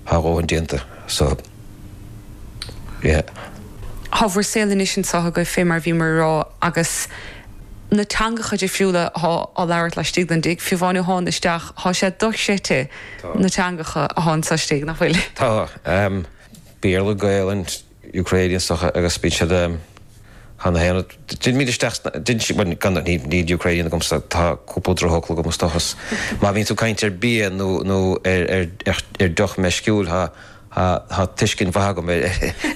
Tá a dhóthain déanta so, yeah. Tá mhuir saol anois anseo agaibh fé mar a bhí mé a rá agus na teangacha difriúla atá á labhairt laistigh don dtigh, fiú amháin ó thánag isteach, tá sé dochreidte na teangacha atá anseo istigh, nach bhfuil? Tá. Béarla, Gaelainn, Ukrainians acu agus bíonn siad cheana féin ag dil míle isteach sna, dil, bhuel gan, níl Ukrainian agamsa, tá cúpla drochfhocal agam is dócha, is má bhíonn tú ag caint ar bia nó, nó ar, ar, ar deoch meisciúil thá, thá, thá tuiscint mhaith agam ar,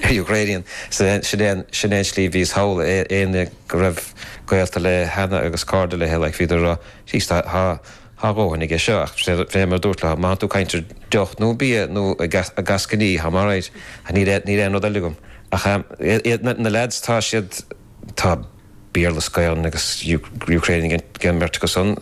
ar Ukrainian. So sin é an, sin é an slí nuair a bhíos thall, aon, aon, go raibh gaolta léi cheana agus cairde léithi like bhíodar a rá jeez thá, thá, Thá a dhóthain aige seo ach fé mar a dúirt leo, má bhíonn tú ag caint ar deoch nó bia nó eascainí thá maith air ach níl aon níl aon rud eile agam ach na leaids tá siad tá Béarla is Gaelainn agus Ukrainian ag an mbeirt acu san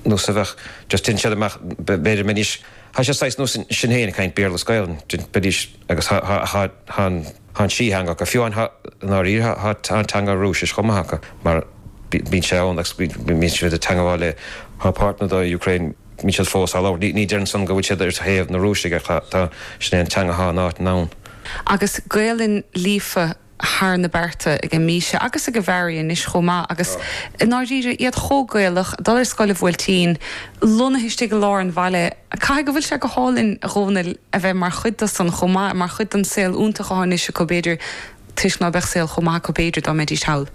nó sa bheadh just dhein siad amach b'fhéidir mbeidís thá siad saghas nós iad féin ag caint Béarla is Gaelainn dhein beidís Agus tá an trí theanga acu. Fiú amháin i ndáiríre tá an teanga Rúisis chomh maith acu mar bíonn sé ann agus bíonn siad ag teangabháil le páirt na Ucraine, bíonn siad fós á labhairt. Ní deireann san go bhfuil siad ar thaobh na Rúisigh ach tá, sin é an teanga atá in áiteanna ann. Agus Gaolainn líofa thar na bearta ag Míse agus ag Farraí anois chomh maith agus i ndáiríre iad chomh Gaelach, ag dul ar scoil an Bhuailtín, lonnaithe istigh i lár an bhaile. Caithfidh go bhfuil sé go hálainn, a Dhomhnaill, a bheith mar chuid de san chomh maith, mar chuid den saol iontach atá anois acu b'fhéidir toisc ná beadh saol chomh maith acu b'fhéidir dá mbeidís thall.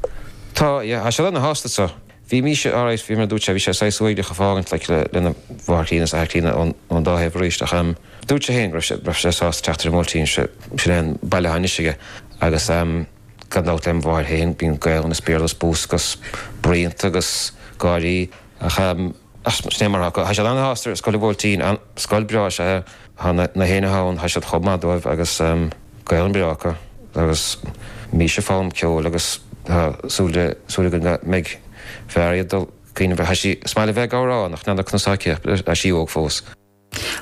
Tá, yeah. Tá siad ana-shásta anso. Bhí Míse alright, bhí mé, dúirt sé, bhí sé saghas uaigneach a fhágaint like lena mháthair chríonna is athair críonna ón dá thaobh arís ach ehm dúirt sé féin go raibh sé, go raibh sé sásta teacht ar an mBuailtín, sé, sin é an baile atá anois aige agus ehm gan dabht lem mháthair féin, bíonn Gaolainn is Béarla is bús agus bruíonta agus gáirí ach ehm, ach sin é mar atá, tá siad an-sásta ar Scoil an Bhuailtín, an, scoil breá is ea é. Thá na héinne ann, thá siad chomh maith dóibh agus Gaolainn bhreá acu agus Míse ag foghlaim ceoil agus thá súil againn go mbeidh Farraí ag dul chuige ina dhiaidh. Thá sí is maith léi bheith ag amhrán nach n-ana-chnuasach aici ach thá sí óg fós.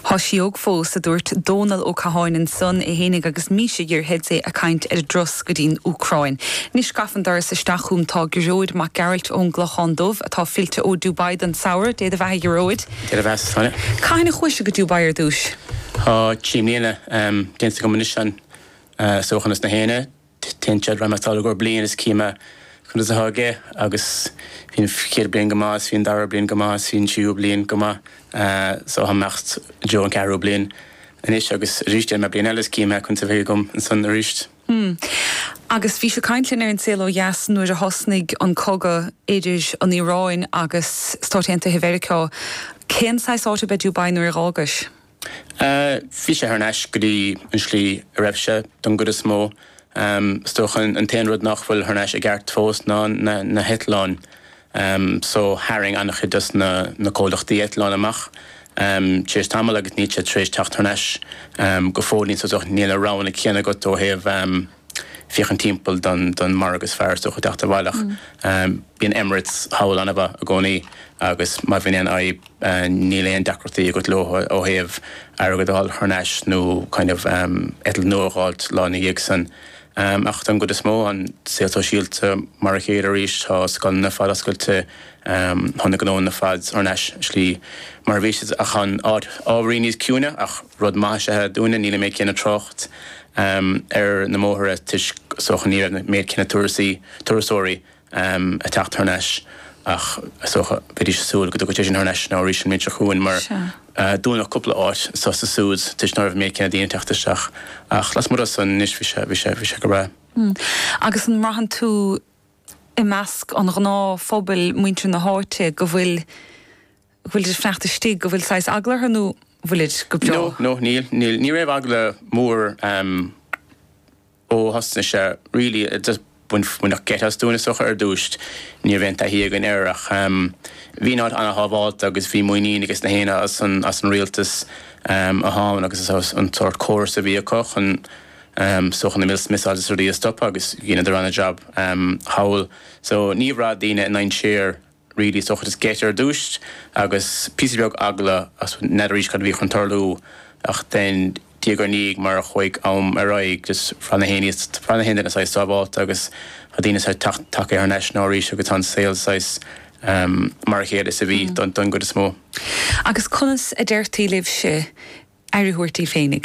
Thá sí óg fós, a dúirt Dónal Ó Catháin ansan é fhéinig agus Míse ina aice agus é a caint ar an dturas go dtí'n Úcráin. Anois gafa an doras isteach chugam tá Gearóid Mac Gearailt ón gClochán Dubh atá fillte ó Dubai don samhradh, dé do bheatha a Ghearóid! Deireadh Mheas Fine. Cathain a chuais go Dubai ar dtúis? Tá trí mbliana déanta agam anois ansan san UAE na hAoine. Dúrt raghad sall i gcomhair bliain is cífidh mé conas atá aige agus bhí an chéad bliain go maith is bhí an dara bliain go maith is bhí an tríú bliain go maith so táim ag imeacht don an ceathrú bliain anois agus arís déanfaidh mé bliain eile is cífidh mé conas a bheidh agam ansan arís. Hm. Agus bhí sé ag caint linn ar an saol ó dheas nuair a thosnaigh an cogadh idir an Iaráin agus Stáit Aontaithe Mheiriceá. Cén saghas áit ab ea Dubai nuair a dh'fhágais? Bhí sé thar n-ais go dtí an slí a raibh sé, don gcuid is mó. Is dócha an t-aon rud nach bhfuil thar n-ais i gceart fós ná na heitleáin. Um so tharraing an-chuid dos na na comhlachtaí eitleáin amach um tar éis tamaill agus níl siad tar éis teacht thar n-ais um go fóillín so so níl na roghanna céanna agat ó thaobh um féachaint timpeall don don margadh is fearr is dócha teacht abhaile ach um bíonn Emirates thall an-mhaith i gcónaí agus má bhíonn aon fhadhb uh níl aon deacrachtaí agat leo ó thaobh airgead a fháil thar n-ais nó kind of um eitilt nua a dh'fháilt lá ina dhiaidh san. Ach don gcuid is mó an saol sóisialta mar a chéile arís, tá scoileanna ar fad oscailte, tá na gnóanna ar fad thar n-ais sa slí mar a bhí siad ach tá an áit ábhairín níos ciúine ach rud maith is ea é dúinne, níl an méid céanna trácht ar na mbóithre toisc is dócha ní raibh an méid céanna turasóirí. am ag teacht thar n-ais ach is dócha, bheidís ag súil go dtiocfadh sé sin thar n-ais now arís an mbliain seo chugainn mar dúnadh cúpla áit anso is ansúd toisc ná raibh an méid céanna daoine ag teacht isteach ach lasmuigh de san anois bhí sé, bhí sé, bhí sé go breá. Hmm. Agus an mbraitheann tú i measc an ghnáthphobail, muintir na háite go bhfuil, go bhfuilid ag fanacht istigh, go bhfuil saghas eagla orthu nó bhfuilid go breá? No, no, níl, níl, ní raibh eagla mór. Ó thosnaigh sé really just bain baineadh geit as daoine is dócha ar dtúis ní raibh aon taithí againn air ach bhí an áit ana-shábhálta agus bhí muinín ages na héinne as an rialtas thall agus is as an tsórt córas a bhí acu chun is dócha na mis missiles is rudaí a stopadh agus dhéanadar ana-jab thall so níor bhraith daoine i ndainséar really is dócha just geit ar dtúis agus píosa beag eagla agus n'fheadraís cad a bhí chun tarlú ach then diaidh ar ndiaidh mar a chuaigh am ar aghaidh just bhraith na héinne bhraith na héinne saghas sábhálta agus tá daoine saghas teacht tagtha thar n-ais now arís agus tá an saol saghas ehm mar a chéile is a bhí don don gcuid is mó. Agus conas a deirtí libhse aire a thabhairt daoibh féinig?